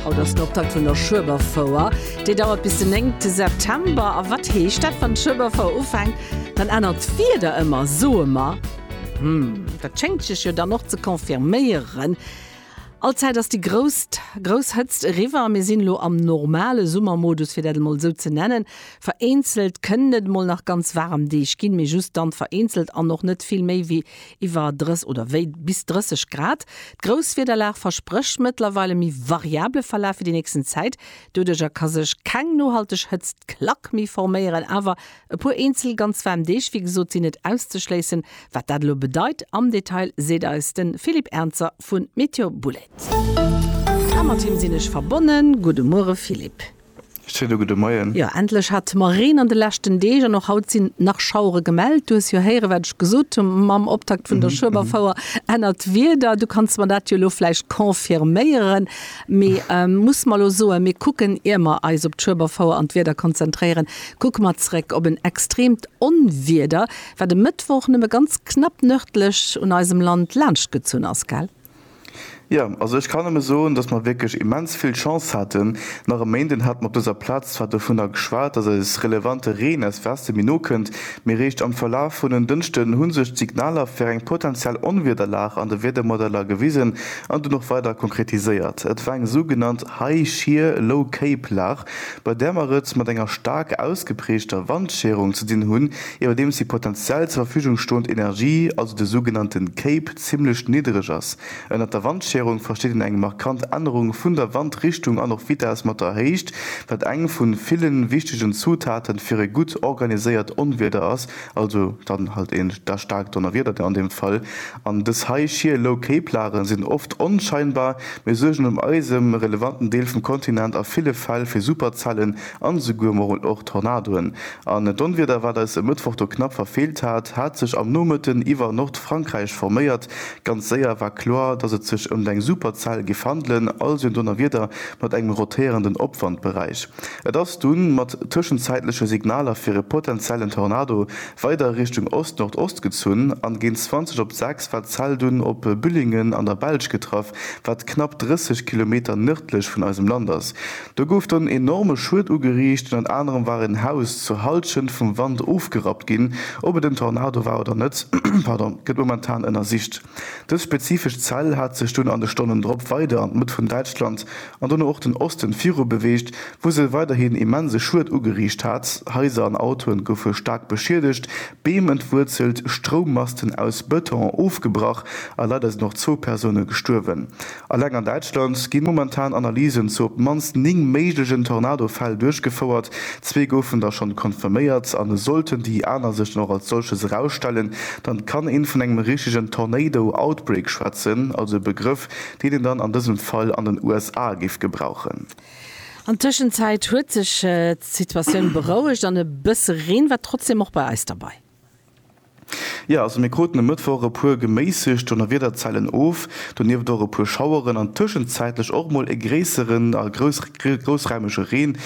Haut ass den Optakt vun der Schueberfouer. Déi dauert bis den 9 te September. A wat heescht dat? Wann d'Schueberfouer ufänkt, dann ännert d'Wieder ëmmer, soe mer. Hm, dat schéngt sech jo dann och ze confirméieren. Allzäit ass déi grouss, grouss Hëtzt eriwwer a mir sinn elo am normale Summermodus, fir dat emol esou ze nennen. Vereenzelt kënnen et emol nach ganz waarem Deeg ginn, mee just dann vereenzelt an och net vill méi wéi iwwer drës oder wéi bis 30 Grad. D'Grousswiederlag versprécht mëttlerweil e méi variable Verlaf fir déi nächsten Zäit. Doduerch a ka sech keng nohalteg Hëtztklack méi forméieren, awer e puer eenzel ganz waarm Deeg, wéi gesot, sinn net auszeschléissen. Wat dat elo bedeit am Detail, seet eis de Philippe Ernzer vu Météo Boulette. A mat him sinn ech verbonnen. Gudde Muere Philippe. Salut gudde Moien. Jo, endlech hat mer Reen an de leschten Deeg an och haut sinn nach Schauere gemellt. Du hues jo héiere wat ech gesot hu mam Optakt vun der Schueberfouer ennert Wieder. Du kanns mer dat jo elo vläicht confirméieren, mee muss mer elo soen, mir kucken, ier mer eis op d'Schueberfouer an d'Wieder konzentréieren, kucke mer zeréck op en extreemt Onwieder, wat e Mëttwoch nëmme ganz knapp nërdlech un eisem Land laanschtgezunn ass, gell? Jo, also ech kann nëmme soen, dass mer wierklech immens vill Chance haten. Nach e Méinden hat mer op dëser Plaz zwar dovunner geschwat, dass eis relevante Reen aus Weste méi no kënnt, mee réischt am Verlaf vun en Dënschden hu sech d'Signaler fir eng potentiell Onwiederlag an de Wiedermodeller gewisen an dunn och weider konkretiséiert. Et war eng sougenannt High Shear Low Cape Lag, bei där mer et mat enger staark ausgeprägter Wandscherung ze dinn hunn, Iwwerdeems déi potenziell zur Verfügung stoend Energie, also de sougenannte CAPE, zimmlech niddereg ass. Ënnert der Wandscherung versteet een eng markant Ännerung vun der Wandrichtung an och Vitess mat der Héicht, wat eng vu ville wichtegen Zutaten fir e gutt organiséiert Onwieder ass, also dann halt een da staarkt Donnerwieder an deem Fall. An dës hei shear low CAPE Lageren sinn oft onscheinbar, mee suergen um eisem relevanten Deel vum Kontinent a ville Fäll fir Superzellen an esouguer mol och Tornadoen, An d'Onwieder, wat eis e Mëttwoch do knapp verfeelt hat, hat sech am Nomëtten iwwer Nordfrankräich forméiert. Ganz séier war kloer, dass et sech ëmt eng Superzell géif handelen, also en Donnerwieder mat engem rotéierenden Opwandberäich. Et ass dunn mat tëschenzäitleche Signaler fir e potentiellen Tornado weider Richtung Ost-Nordost gezunn an géint 20 op 6 war d'Zell dunn op Büllingen an der Belsch getraff, wat knapp 30 Kilometer nërdlech vun eisem Land ass. Do gouf dann enorme Schued ugeriicht, ënnert anerem war en Haus zur Halschent vum Wand ofgerappt ginn. Ob et en Tornado war oder net, pardon, gëtt momentan ënnersicht. Dës spezifesch Zell hat sech dunn an de Stonnen drop weider an d'Mëtt vun Däitschland an dono och den Osten viru beweegt, wou se weiderhin immense Schued ugeriicht hat. Haiser an Autoen goufe staark beschiedegt, Beem entwuerzelt, Stroummasten aus Bëton ofgebrach a leider sinn och zwou Persoune gestuerwen. Eleng an Däitschland gi momentan Analysen zu op d'mannst 9 méiglegen Tornado-Fäll duerchgefouert. Zwee goufen der schonn confirméiert, a sollten déi aner sech dann och als solches erausstellen, dann kann een vun engem richtegen Tornado Outbreak schwätzen, also e Begrëff, deen een dann an dësem Fall an den USA géif gebrauchen. An Tëschenzäit huet sech d'Situatioun berouegt an e bësse Reen war trotzdem och bei eis derbei. Jo, also mir kruten e Mëttwoch e puer geméissegt Donnerwiederzellen of, donieft och e puer Schaueren an tëschenzäitlech och mol e gréisseren a groussraimege Reen.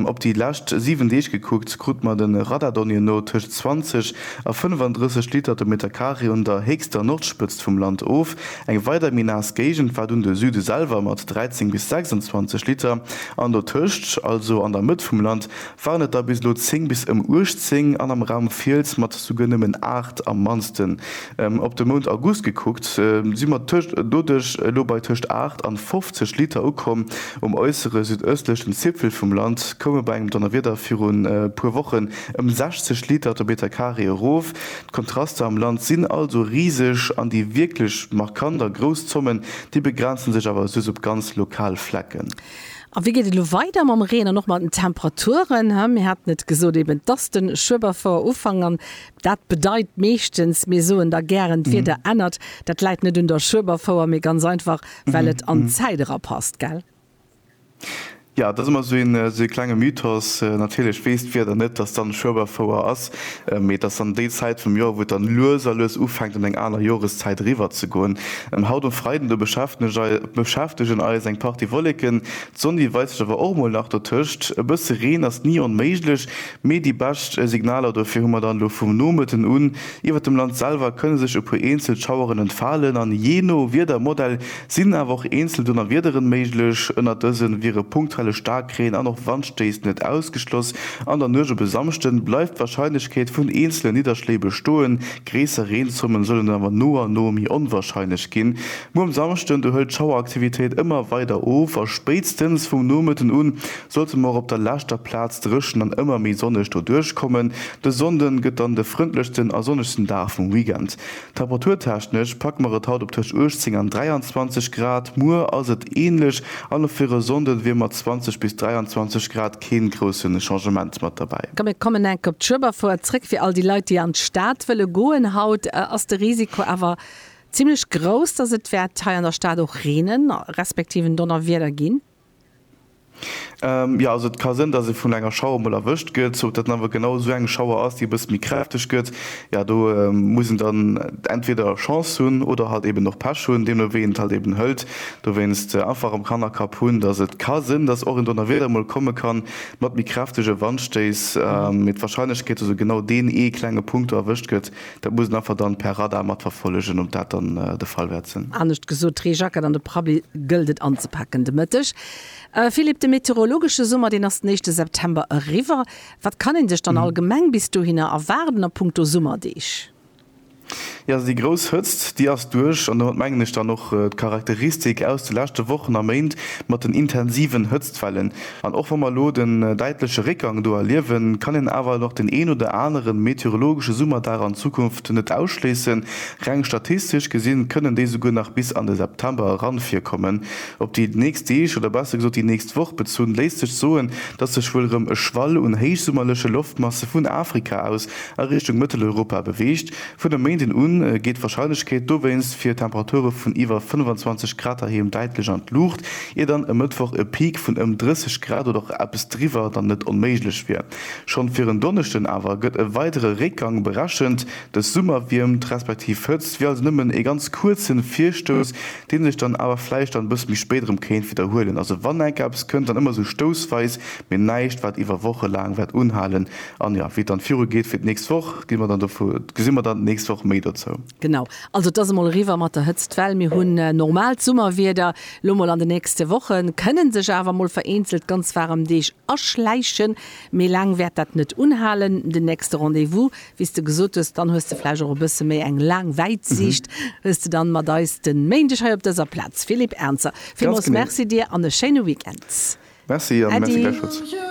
Op déi lescht 7 Deeg gekuckt, krute mer de Radardonnier no tëscht 20 a 35 Liter de Meterkaree un der héchster Nordspëtzt vum Land of. Eng weider méi naass Géigend war dunn de Süde selwer mat 13 bis 26 Liter an dotëscht, also an der Mëtt vum Land, waren et der bis elo 10 bis ëm 18 an am Raum Fiels mat souguer nëmmen 8 am mannsten. Op de Mount August gekuckt si mer doduerch elo bei tëscht 8 an 50 Liter ukomm. Um äussere südëstlechen Zipfel vum Land koum e bei engem Donnerwieder virun e puer Wochen ëm 60 Liter de Meter Carré erof. D'Kontraster am Land sinn also riseg an déi wierklech markant a grouss Zommen, déi begrenze sech awer soss op ganz lokal Flecken. A wéi geet et elo weider mam Reen an och mat den Temperaturen? Mir haten et gesot, eben, et ass de Schueberfouer-Ufank an dat bedeit meeschtens, mir soen da gären, d'Wieder ännert. Dat läit net un der Schueberfouer, mee ganz einfach, well et an d'Zäit erapasst, gell? Jo, et ass ëmmer esou ee klenge Mythos, natierlech weess d'Wieder net, datt dann Schueberfouer ass. Mee et ass dann déi Zäit vum Joer, wou et dann lues a lues ufänkt an eng aner Joreszäit eriwwer ze goen. Haut um Freiden do beschäftegen eis eng Partie Wolleken, d'Sonn déi weist sech awer och mol nach dotëscht. E bësse Reen ass ni onméiglech, mee déi bescht Signaler dofir hu mer dann elo. Vum Nomëtten un iwwert dem Land selwer kënne sech e puer eenzel Schaueren entfalen an jee no Wiedermodell sinn awer och eenzel Donnerwiederen méiglech. Ënnert dësen wiere punktuelle Staarkreen an och Wandstéiss net ausgeschloss. An der Nuecht op e Samschden bleift d'Warscheinlechkeet vun eenzele Nidderschléi bestoen. Gréisser Reenzommen sollen awer no a no méi onwarscheinlech ginn. Muer um Samschden do hëlt d'Schaueraktivitéit ëmmer weider of a spéitstens vum Nomëtten un sollte mer och op der leschter Plaz dréchen an ëmmer méi sonneg doduerch kommen. De Sonnde gëtt dann de frëndlechsten a sonnegsten Dag vum Weekend. Temperaturtechnesch packe mer et haut op tëscht 18 an 23 Grad, muer ass et änlech an och fir e Sonnden wier mat 20 bis 23 Grad keen groussen Changement mat derbäi. Komm mir kommen enk op d'Schueberfoer zréck. Fir all déi Leit déi an d'Stad wëlle goen haut ass de Risiko awer zimlech grouss, dass et wäert hei an der Stad och reenen, respektiv en Donnerwieder ginn. Jo, also et ka sënn, dass ee vun enger Schauer emol erwëscht gëtt. Ob dat dann awer genau esou eng Schauer ass, déi e bësse méi kräfteg gëtt, jo, do muss een dann entweder Chance hunn oder halt eben och Pech hunn, deemno wéi een et halt eben hëlt. Dowéinst einfach am Kannerkapp hunn, dass et ka sënn, dass och en Donnerwieder emol komme kann, mat méi kräftege Wandstéiss, mee d'Warscheinlechkeet, dass esou genau deen ee klenge Punkt do erwëscht gëtt, Dat muss een einfach dann per Radar matverfollegen, ob dat dann de Fall wäert sen. Anescht gesot, d'Reejacket an de Prabli gëllt et anzepacken de Mëtteg. Philippe, de meteorologesche Summer, deen ass den éischte September eriwwer. Wat kann een sech dann allgemeng bis dohinner erwaarden a punkto Summerdeeg? Jo, also déi grouss Hëtzt, déi ass duerch an domat mengen ech dann och d'Charakteristik aus de leschte Wochen a Méint mat den intensiven Hëtztwellen. An och wa mer elo den däitleche Réckgang do erliewen, kann een awer nach den een oder anere meteorologesche Summerdag an Zukunft net ausschléissen. Reng statistesch gesi kënnen déi souguer nach bis an de September eran virkommen. Op déi nächst Deeg, oder besser gesot déi nächst Woch bezunn, léisst sech soen, dass sech wuel erëm e Schwall un héichsummerleche Loftmasse vun Afrika aus a Richtung Mëtteleuropa beweegt. Vun e Méinden u geet d'Warscheinlechkeet dowéinst fir Temperature vun iwwer 25 Grad heiheem däitlech an d'Luucht, ier dann e Mëttwoch e Peak vun ëm 30 Grad oder och eppes driwwer dann net onméiglech wier. Schonn fir en Donneschden awer gëtt e weidere Réckgang berechent. Dës Summerwiermt respektiv Hëtzt wier also nëmmen e ganz kuerze Virstouss, dee sech dann awer vläicht dann e bësse méi spéit erëm kéint widderhuelen. Also wann enk eppes kënnt, dann ëmmer esou stoussweis, mee näischt wat iwwer Woche laang wäert unhalen. An jo, wéi et dann viru geet fir d'nächst Woch, gi mer dann dovu, gesi mer dann d'nächst Woch méi dozou. Genau. Also et ass emol eriwwer mat der Hëtztwell. Mir hunn normaalt Summerwieder elo mol an de nächste Wochen, kënnen sech awer mol vereenzelt ganz waarem Deeg aschläichen. Méi laang wäert dat net unhalen. Den nächste Rendez-vous, wéi s de gesot hues, dann hues de vläicht och e bësse méi eng laang Wäitsiicht, hues de dann mat eis de Méindeg hei op dëser Plaz. Philippe Ernzer, villmools Merci dir an e schéine Weekend. Merci an Merci gläichfalls. Äddi.